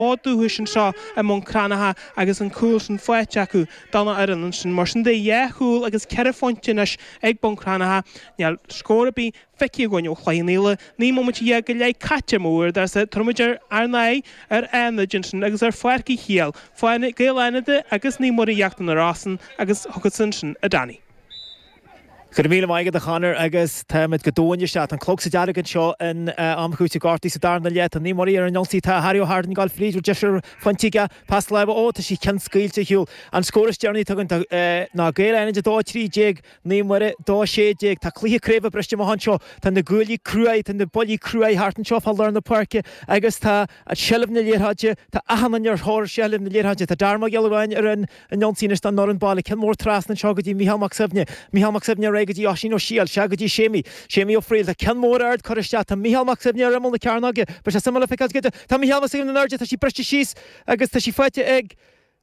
bhfód dúchais anseo i mBun Cranncha agus an cúl sin faighte acu don fhoireann ansin. Mar sin de, dhá chúl agus ceithre phointe anois ag Bun Cranncha, níl scór ar bith feicthe againn ó Chloich Cheann Fhaola, naoi mbomaite dhéag go leith caite ar mo uaireadóirsa, tabharfaimid ar ár n-aghaidh ar Fhánaid ansin agus ar Pháirc Uí Shiadhail, foirne Gaeil Fhánada agus Naomh Muire Íochtar na Rosann agus chugatsa ansin a Danny. Go raibh míle maith agat a Chonair agus táimid go domhain isteach tá an clog sa dearg anseo in am chúitimh gortaithe sa darna leath tá Naomh Muire ar an ionsaí tá Harry Ó hArdáin ag gabháil fríd bhur deirfiúr fan tighe pas láimhe ó tá sí ceann scaoilte ar shiúl an scór is deireanaí atá againn duit ná Gaeil Fhánada 2 13 Naomh Muire 2 16 tá cluiche craoibhe briste amach anseo tá na guaillí cruaidh tá na buillí cruaidh thart anseo fá lár na páirce agus tá seilbh na liathróide tá achan duine ar thóir seilbh na liathróide tá Darren Mac Giolla Bháin ar an ionsaí anois don fhoireann baile, ceann mór trasna anseo go dtí Mícheál Mac Suibhne, Mícheál Mac Suibhne ar aghaidh go dtí Oisín Ó Siadhail, sea go dtí Séimí, Séimí Ó Frighil, tá ceann mór ard curtha isteach, tá Mícheál Mac Suibhne ar imeall na cearnóige, beidh sé suimiúil a fheiceáil cad tá Mícheál Mac Suibhne in airde, tá sí briste síos agus tá sí faighte ag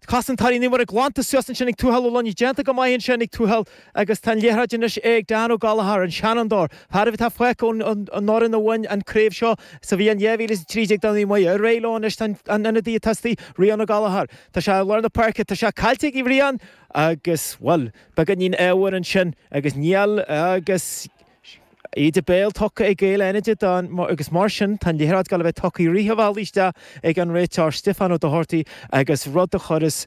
cosantóirí Naomh Mhuire, glanta suas ansin ag Tuathal Ó Luinigh, déanta go maith ansin ag Tuathal agus tá an liathróid anois ag Dan Ó Gallchóir, an seanfhondóir, fear amháin atá fágtha ón fhoireann a bhain an craobh seo sa bhliain 2013 do Naomh Muire, ar aghaidh leo anois tá an ionadaí a thosaigh, Rián Ó Gallchóir. Tá sé i lár na páirce, tá sé caillte ag Rián agus, bhuel, beagáinín ádhmhar ansin agus níl agus íde béil tugtha ag Gaeil Fhánada dó agus mar sin tá an liathróid ag gabháil a bheith tugtha i rith an bhealaigh isteach ag an réiteoir, Stiofán Ó Dochartaigh, agus rud a thabharfas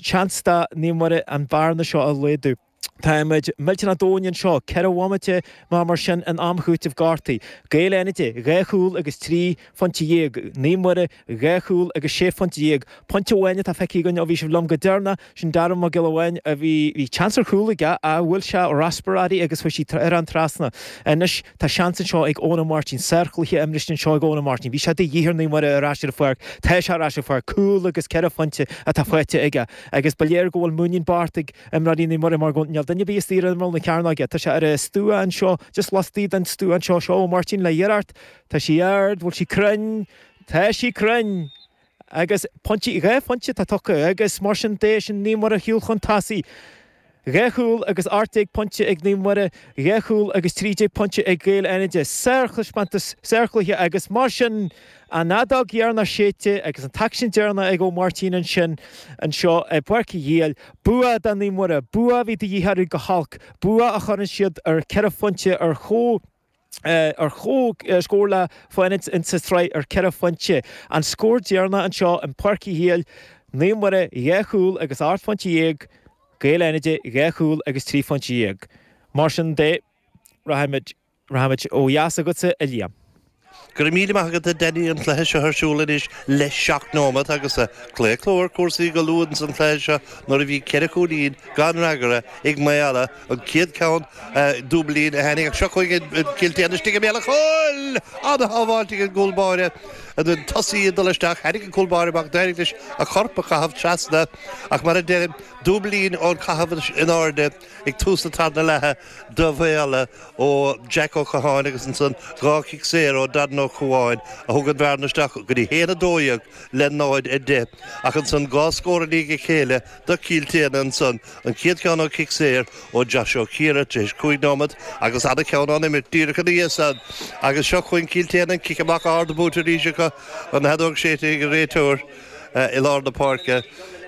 seans do Naomh Muire an bhearna seo a laghdú. Táimid millteanach domhain anseo, ceithre bhomaite nó mar sin in am chúitimh gortaithe. Gaeil Fhánada, dhá chúl agus trí phointe dhéag. Naomh Muire, dhá chúl agus sé phointe déag. Pointe amháin atá feicthe againn ó bhí sibh liom go deireanach. Sin Darren Mac Giolla Bháin. Bhí seans ar chúl aige ach bhuail sé raspar uirthi agus chuaigh sí thar an trasnán. Anois tá seans anseo ag Eoin Ó Máirtín. Sárchluiche imeartha anseo ag Eoin Ó Máirtín. Bhí sé de dhíth ar Naomh Muire ar ais ar an pháirc. Tá sé ar ais ar an pháirc. Cúl agus ceithre phointe atá faighte aige. Agus ba léir go bhfuil muinín Bart ag. imreoirí Naomh Muire mar gan aon duine ar bith istigh ar imeall na cearnóige. Tá sé ar an stua anseo just laistigh den stua anseo seo Ó Máirtín le hiarracht Tá sí ard, bhfuil sí cruinn, tá sí cruinn! agus pointí, dhá phointe atá tugtha agus mar sin de sin Naomh Muire ar shiúl chun tosaigh. Dhá chúl agus ocht déag pointe ag Naomh Muire, dhá chúl agus trí déag pointe ag Gaeil Fhánada. Sárthaispeántas, sárchluiche agus mar sin. An fheadóg dheireanach séidte agus an t-aicsean deireanach ag Ó Máirtín ansin anseo i bPáirc Uí Shiadhail. Bua do Naomh Muire, bua a bhí de dhíth orthu go holc, bua a chuireann siad ar cheithre phointe ar comhscór le Fánaid sa tsraith ar cheithre phointe. An scór deireanach anseo i bPáirc Uí Shiadhail, Naomh Muire dhá chúl agus ocht phointe dhéag, Gaeil Fhánada dhá chúl agus trí phointe dhéag. Mar sin de, rachaimid. Rachaimid ó dheas agatsa, a Liam. Go raibh míle maith agat, a Danny. An cluiche seo ar siúl anois le seacht nóimeat agus claochlú ar chúrsaí go luath ins an chluiche seo nuair a bhí ceithre chúilín gan fhreagra ag Maolla, an chéad cheann Dúbailín a tháinig ach seo chugainn Cill tSéadhna istigh i mbéal a' chúil! An-shábháilt ag an gcúl báire an tosaí ag dul isteach. Tháinig an cúl báire amach, d'éirigh leis a chorp a chaitheamh trasna ach mar a deirim, Dúbailín ón caitheamh in airde ag tús na tarna leatha. do Mhaolla ó Jack Ó Catháin agus ansan dhá chic saor ó Darren Ó Comháin a thug an bhearna isteach go dtí 1, 12 le 0, 10. Ach ansan dhá scór i ndiaidh a chéile do Cill tSéadhna ansan, an chéad cheann ó chic saor ó Josh Ó Ciardha tar éis 5 nóiméad agus ana cheann ón imirt díreach ina dhiaidh san agus seo chugainn Cill tSéadhna an cic amach ard buaite arís acu, an fheadóg séidte ag an réiteoir i lár na páirce.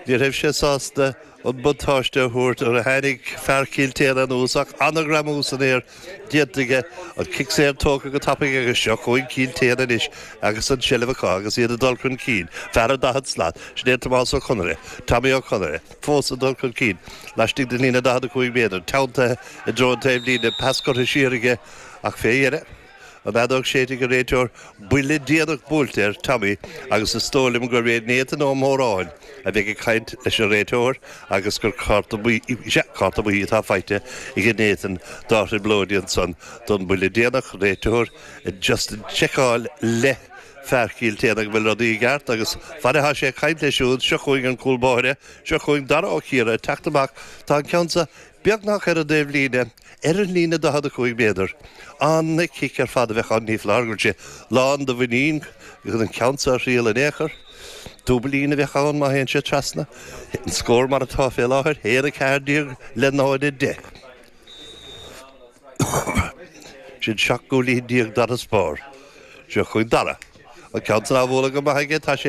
Ní raibh sé sásta. an buntáiste a thabhairt nuair a tháinig fear Chill tSéadhna anuas ach ana-ghreamú san aer déanta aige, an cic saor tógtha go tapaidh agus seo chugainn Cill tSéadhna anois agus an tseilbh acu agus iad ag dul chun cinn, fear an 40 slat, sin é Tomás Ó Conaire, Tommy Ó Conaire, fós ag dul chun cinn laistigh den líne 45 méadar, teanntaithe i dtreo an taobh líne, pas curtha siar aige ach fé dheireadh. An fheadóg séidte ag an réiteoir buille déanach buailte ar Tommy agus is dóigh liom gurb é Nathan Ó Móráin a bheidh ag caint leis an réiteoir agus gur cárta buí atá faighte ag Nathan dá thrioblóidí ansan don buille déanach, réiteoir just ag seiceáil le fear Chill tSéadhna an bhfuil rudaí i gceart agus fad atá sé ag caint leis siúd seo chugainn an cúl báire, seo chugainn Dara Ó Ciardha ag teacht amach, tá an ceann sa beagnach ar an dtaobhlíne, ar an líne 45 méadar. An-chic ar fad a bheadh ann, ní foláir go bhfuil sé lán do mhuinín chun an ceann seo a thriail in aon chor. Dúbailín a bheadh ann má théann sé trasna, an scór mar atá fé láthair, 1 14 le 0 10. Sin 17 gcúilín d'fharasbarr. Seo chugainn Dara. An ceann san á bhualadh go maith aige, tá sé.